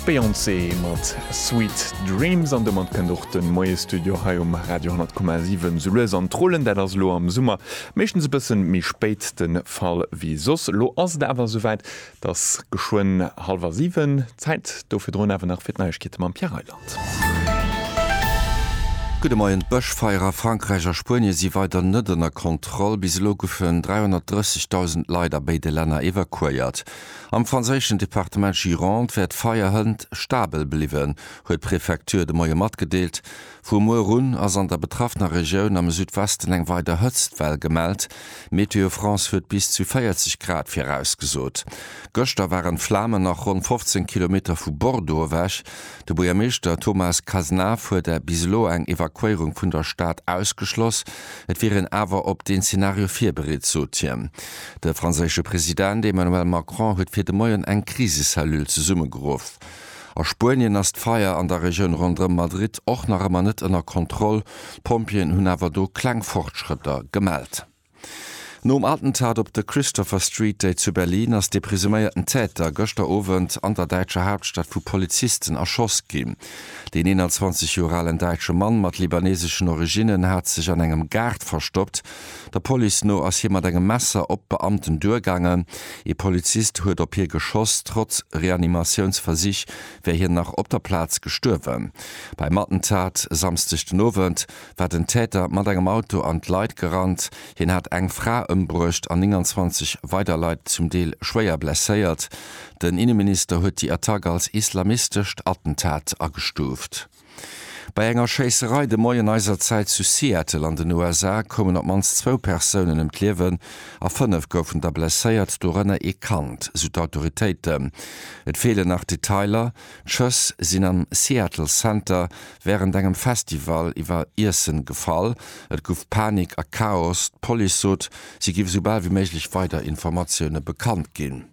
D'Beyoncé mat Sweet Dreams an domat kënnt och de Moiestudio hei um Radio 10,7 sou lues an d'Rollen. Dat ass elo am Summer meeschtens e bëssen méi spéit de Fall wéi soss. Elo ass et awer esouwäit, et ass geschwënn hallwer siwen. Zäit do virdrun awer nach fir d'Neiegkeete mam Pierre Reyland. Gudde Moien, D'Bëschfeier a Frankräich a Spuenie si weider net ënner Kontroll. Bis elo goufen 330.000 Leit a béide Länner evakuéiert. Am franséischen Departement Gironde wär d'Feier hënt stabel bliwwen, huet d'Prefecture de Moie matgedeelt. Vu muer un ass an der betraffener Regioun am Südwesten eng weider Hëtztwell gemellt. Météo France huet bis zu 40 Grad virausgesot. Gëschter waren d'Flamen nach ronn 15 Kilometer vu Bordeaux ewech. De Buergermeeschter Thomas Cazenave huet bis elo eng Evakuéierung vun der Stad ausgeschloss. Et wier een awer op deen Zenario virbereet, sot hien. De franséische President Emmanuel Macron huet fir de Moien eng Krisecellule zesummegeruff. A Spuenien ass d'Feier an der Regioun ronderëm Madrid och nach ëmmer net ënner Kontroll, d'Pompjeeën hunn awer do kleng Fortschrëtter gemellt. Nom Attentat op de Christopher Street Day zu Berlin ass dee presuméierten Täter gëschter Owend an der däitscher Haaptstad vu Polizisten erschoss ginn. Deen 21 Joer alen däitsche Mann mat libaneseschen Originnen hat sech an engem Gaart verstoppt, Der Police no ass hie mat engem Messer op d'Beamten duergaangen. Ee Polizist huet op hie geschoss. Trotz Reanimatiounsversich wär hien nach op der Plaz gestuerwen. Beim Attentat e Samsdeg den Owend war den Täter mat engem Auto an d'Leit gerannt. Hien hat eng Fra ëmbruecht an 29 weider Leit zum Deel schwéier blesséiert. Den Inneminister huet déi Attack als islamistescht Attentat agestuuft. Bei enger Schéisserei de Moien eiser Zäit zu Seattle an den USA koumen op d'mannst zwou Persounen ëm d'Liewen a fënnef goufen da blesséiert, dorënner ee Kand, sou d'Autoritéiten. Et feelen nach Detailer, d'Schëss sinn am Seattle Center wärend engem Festival iwwer Iessen gefall. Et gouf Panik a Chaos. D'Police sot, si géif esou bal wéi méiglech weider Informatioune bekannt ginn.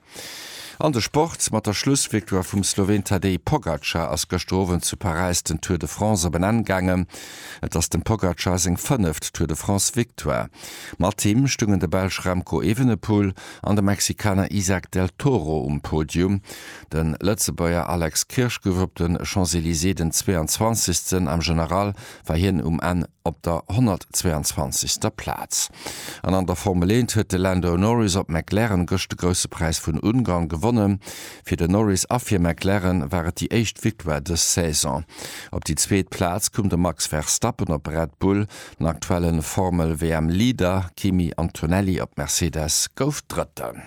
An de Sport, Mat der Schlussvictoire vum Sloween Tadej Pogacar ass gëschter Owend zu Paräis den Tour de France op en Enn gaangen. Et ass dem Pogacar seng fënneft Tour de France Victoire. Mat him stungen de Belsch Remco Evenepoel an de Mexikaner Isaac Del Toro um Podium. De Lëtzebuerger Alex Kirsch gouf op de Champs-Elysées den 22. am General war hien um Enn op der 122. Plaz. An an der Formel 1 huet de Lando Norris op McLaren gëscht de Grousse Präis vun Ungarn gewonnen. Fir den Norris a fir McLaren war et déi éischt Victoire dës Saison. Op déi zweet Plaz koum de Max Verstappen op Red Bull. Den aktuelle Formel-WM-Leader Kimi Antonelli op Mercedes gouf Drëtten.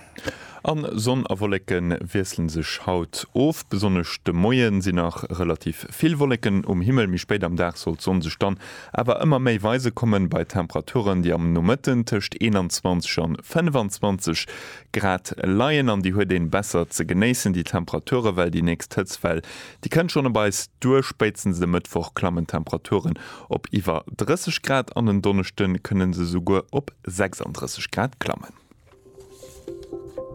An Sonn a Wollécken wiesselen sech haut of. Besonnesch de Moien sin nach relativ vill Wollécken um Himmel, mi spéit am Dag soll d'Sonn sech dann awer ëmmer méi weise kommen, bei Temperaturen déi am Nomëtten tëscht 21 an 25 Grad leien. An déi huet een besser ze genéissen, déi Temperaturen, well déi nächst Hëtztwell déi kënnt schon op eis duer. Spéitstens de Mëttwoch klammen d'Temperaturen op iwwer 30 Grad an en Donneschden kënnen se souguer op 36 Grad klammen.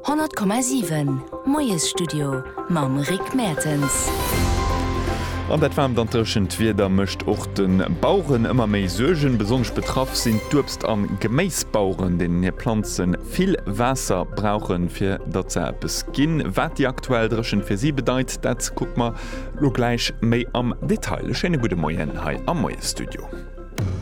100,7 Moiesstudio mam Rick Mertens. An dat waarmt an dréchent Wieder mécht och de Baueren ëmmer méi Suergen. Besonnesch betraff sinn d'Uebst a Geméisbaueren, deenen hir Planze vill Waasser brauchen, fir datt se eppes ginn. Wat déi aktuell Dréchent fir si bedeit, dat kucke mer elo gläich méi am Detail. E schéine gudde Moien hei am Moiesstudio.